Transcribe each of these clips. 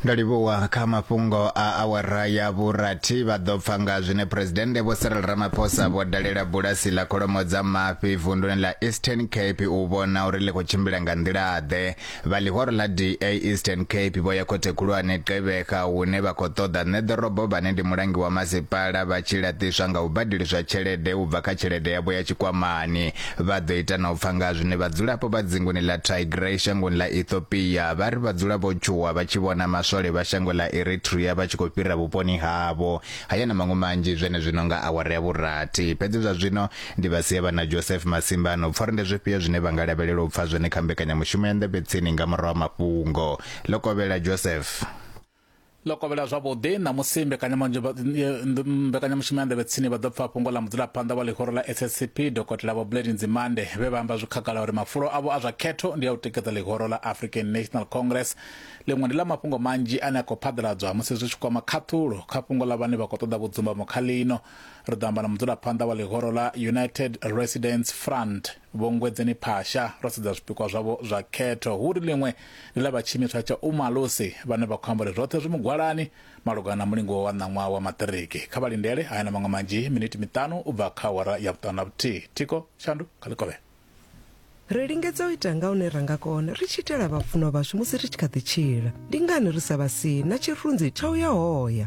ndo livhuwa kha mafhungo a awara ya vhurathi vha ḓo pfa nga zwine phuresidennde vho Cyril Ramaphosa vho dalela bulasi ḽa kholomo dza mafhi vunduni ḽa Eastern Cape u vhona uri ḽi khou tshimbila nga nḓila-ḓe vha ḽihoro ḽa DA Eastern Cape vho ya khothe khulwane Gqeberha hune vha khou ṱoḓa nṋe ḓorobo vhane ndi mulangi wa masipala vha tshi laṱiswa nga u badeliswa tshelede u bva kha tshelede yavho ya tshikwamani Vha ḓo ita na u pfa nga ha zwine vhadzulapo vha dzinguni ḽa Tigray shangoni ḽa Ethiopia vha ri vha dzula vho tshuwa vha tshi vhona maswole vha shango ḽa Eritrea vha tshi khou fhira vhuponi havho. Haya na maṅwe manzhi zwenezwino nga awara ya vhurathi. Fhedzi zwa zwino ndi vha sia vha na Joseph Masimba a no pfa uri ndi zwifhio zwine vha nga lavhelela u pfa zwone kha mbekanyamushumo ya Nḓevhetsini nga murahu ha mafhungo. Ḽo kovhela, Joseph. ḽo kovhela zwavhuḓi ṋamusi mbekanyamushumo ya nḓevhe tsini vha ḓo pfa fhungo ḽa mudzulaphanḓa wa ḽihoro ḽa SSCP dokotela vho Blade Nzimande vhe vha amba zwi khagala uri mafulo avho a zwa khetho ndi a u tikedza ḽihoro ḽa African National Congress ḽiṅwe ndi ḽa mafhungo manzhi ane a khou phaḓaladzwa musi zwi tshi kwama khaṱhulo kha fhungo ḽa vhane vha khou ṱoḓa vhudzumbamo kha ḽino ri ḓo amba na mudzulaphanḓa wa ḽihoro ḽa United Residents Front Vho Ngwedzeni Phasha, ro sedza zwipikwa zwavho zwa khetho, hu ri ḽiṅwe ndi ḽa vha tshiimiswa tsha Umalusi vhane vha khou amba uri zwoṱhe zwi mugwalani malugana na mulingo wa ṋaṅwaha wa maṱiriki. Kha vha lindele haya na maṅwe manzhi miniti miṱanu u bva kha awara ya vhuṱanu na vhuthihi. Thiko Shandu kha Ḽikovhela. Ri lingedza u ita nga hune ra nga kona ri tshi itela vhafunwa vhashu musi ri tshi kha ḓi tshila. Ndi ngani ri sa vha sii na tshirunzi tsha u ya hoya?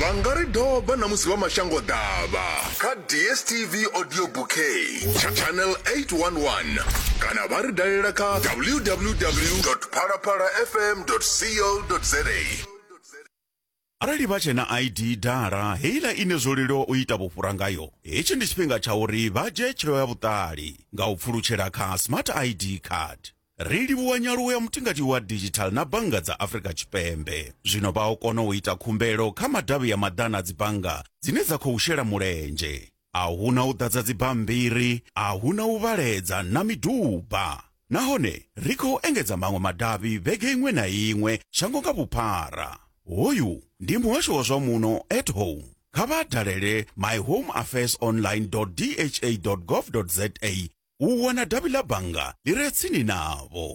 vha nga ri doba na musi vha mashango ḓavha kha dstv audio bouquet tsha channel 811 kana vha ri dalela kha www phalaphala fm co za arali vha tshe na id dala heiḽa ine zwo leluwa u ita vhufhura ngayo hetshi ndi tshifhinga tsha uri vha dzhie tsheo ya vhuṱali nga u pfulutshela kha smart id card Ri livhuwa nyaluwo ya mutingati wa digital na bannga dza Afrika Tshipembe. Zwino vha o kona u ita khumbelo kha madavhi ya maḓana a dzibannga dzine dza khou shela mulenzhe. A hu na u ḓadza dzibammbiri, a hu na u vhaledza na miduba. Nahone ri khou engedza maṅwe madavhi vhege iṅwe na iṅwe shango nga vhuphara. Hoyu ndi muhasho wa zwa muno at home. Kha vha dalele myhomeaffairsonline.dha.gov.za u wana davhi ḽa bannga ḽi re tsini navho.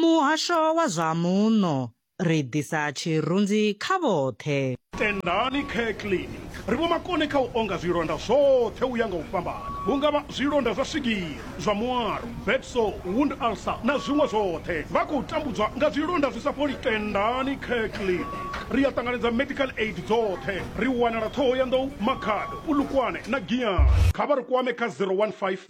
Muhasho wa zwa Muno, Ri ḓisa tshirunzi kha vhoṱhe. Tendani Care Clinic ri vhomakone kha u onga zwilonda zwoṱhe u ya nga u fhambana, hu nga vha zwilonda zwa swigiri, zwa muaro, bed sore, wound ulcer na zwiṅwe zwoṱhe. Vha khou tambudzwa nga zwilonda zwi sa fholi? Tendani Care Clinic ri a ṱanganedza medical aid dzoṱhe. Ri wanala Ṱhohoyanḓou, Makhado, Polokwane na Giyani. Kha vha ri kwame kha 015